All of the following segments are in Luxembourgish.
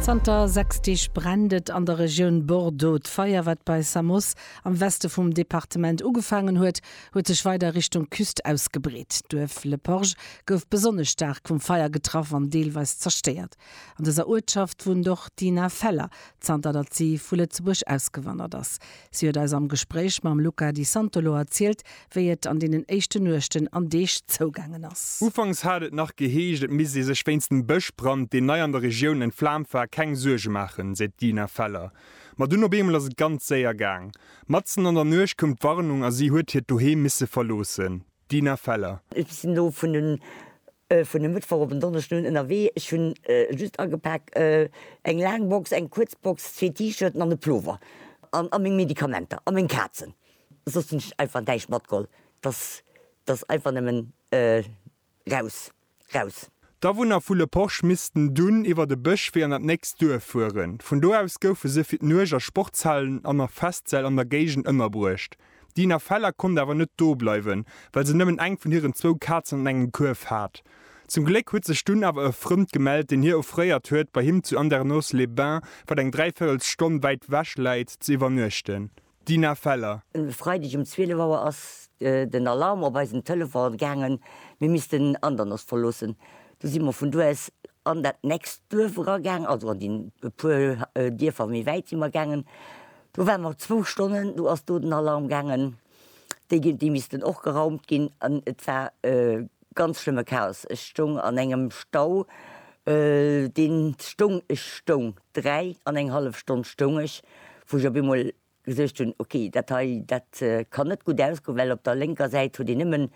Zanter sechs Deeg brennt et an der Regioun Bordeaux. D'Feier, wat bei Samos am Weste vum Departement ugefaangen huet, huet sech weider Richtung Küst ausgebreet. D'Duerf Le Porge gouf besonnesch staark vum Feier getraff an deelweis zerstéiert. An dëser Uertschaft wunnt och d'Ina Feller, zanter datt si vu Lëtzebuerg ausgewandert ass. Si huet eis am Gespréich mam Luca Di Santolo erzielt, wéi et an deenen éischten Nuechten an Deeg zougaangen ass. Ufanks hat et nach geheescht, et misst ee sech wéinst dem Bëschbrand, deen nei an der Regioun entflaamt war, keng Suerge maachen, seet d'Dina Feller. Ma dunn op eemol ass et ganz séier gaang. Matzen an der Nuecht koum d'Warnung a si huet hiert Doheem misse verloossen. D'Dina Feller. Ech sinn elo vun e Mëttwoch op en Donneschden un ënnerwee. Ech hu just agepak eng laang Box, eng kuerz Box, zwee T-Shirten an e Plover a meng Medikamenter a meng Kazen. Soss hun ech einfach näischt matgeholl, dass dass einfach nemmen raus raus. D'Awunner vu Le Porche missten dunn iwwert e Bëschwee an dat nächst Duerf fueren. Vun do aus goufe se fir d'Nuecht a Sportshallen an a Festsäll an der Géigend ënnerbruecht. D'Dina Feller konnt awer net do bleiwen, well se nëmmen eng vun hiren zwou Kazen an engem Kuerf hat. Zum Gléck huet sech dunn awer e Frënd gemellt, deen hir offréiert huet, bei him zu Andernos-les-Bains, wat eng dräivéirels Stonn wäit wech läit, ze iwwernuechten. D'Dina Feller. E Freideg um 12 Auer ass den Alarm op eisen Telefon gaangen, mir missten Andernach verloossen. Du si mer vun do aus an dat nächst Duerf eragaangen, also an déi puer Dierfer méi wäit si mer gaangen. Do ware mer zwou Stonnen, du ass do den Alarm gaangen, déi missten och geraumt ginn an et war Ganz schlëmme Chaos, ech stoung an engem Stau, deen stoung, ech stoung, dräi an eng hallef Stonn stoung ech, wou ech op eemol gesuergt hunn, ok, dat hei, dat kann net gutt ausgoen, well op der lénker Säit huet een nëmmen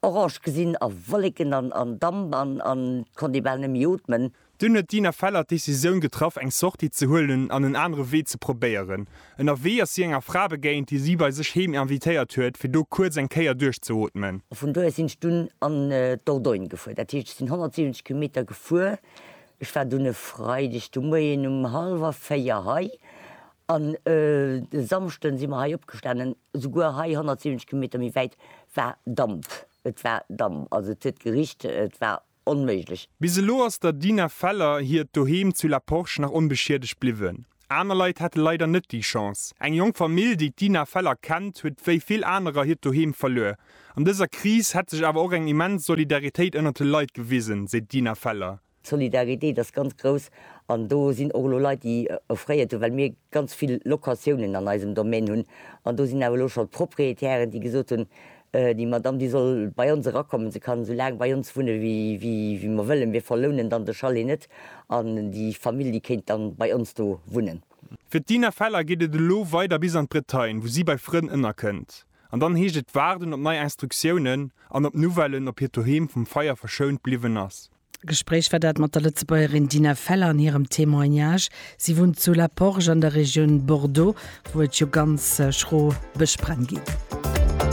orange gesinn a Wolleken an Damp an konnt ee bal net méi ootmen. Dunn huet d'Ina Feller d'Decisioun getraff, eng Sortie ze huelen an en anere Wee ze probéieren. Ënnerwee ass si enger Fra begéint, déi si bei sech heem invitéiert huet, fir do kuerz eng Kéier duerchzeootmen. A vun do aus sinn ech dunn an d'Dordogne gefuer. Dat heescht, ech sinn 170 Kilometer gefuer. Ech war dunn e Freideg de Moien um hallwer véier hei an e Samschden si mer hei opgestanen. Souguer hei, 170 Kilometer méi wäit, war Damp. Et war Damp, also et huet gericht, et war onméiglech. Bis elo ass der Dina Feller hiert Doheem zu La Porche nach onbeschiedegt bliwwen. Aner Leit hate leider net déi Chance. Eng jonk Famill, déi d'Dina Feller kennt, huet wéi vill anerer hiert Doheem verluer. An dëser Kris hätt sech awer och eng immens Solidaritéit ënnert de Leit gewisen, seet d'Dina Feller. D'Solidaritéit ass ganz grouss an do sinn och elo Leit, déi offréiert hunn, well mir ganz vill Locatiounen an eisem Domaine hunn. An do sinn awer elo schonn d'Propriétairen, déi gesot hunn, Déi Madame, déi soll bei ons erakommen, se kann esou laang bei ons wunne wéi mer wëllen, mir verlounen dann de Chalet net an déi Famill, déi kéint dann bei ons do wunnen. Fir d'Dina Feller geet et elo weider bis an d'Bretagne, wou si bei Frënn ënnerkënnt. An dann heescht et waarden op nei Instruktiounen an op Nouvellen, ob hiert Doheem vum Feier verschount bliwwen ass. Gespréich war dat mat der Lëtzebuergerin Dina Feller an hirem Témoignage. Si wunnt zu La Porge an der Regioun Bordeaux, wou et jo ganz schro Bëschbränn ginn.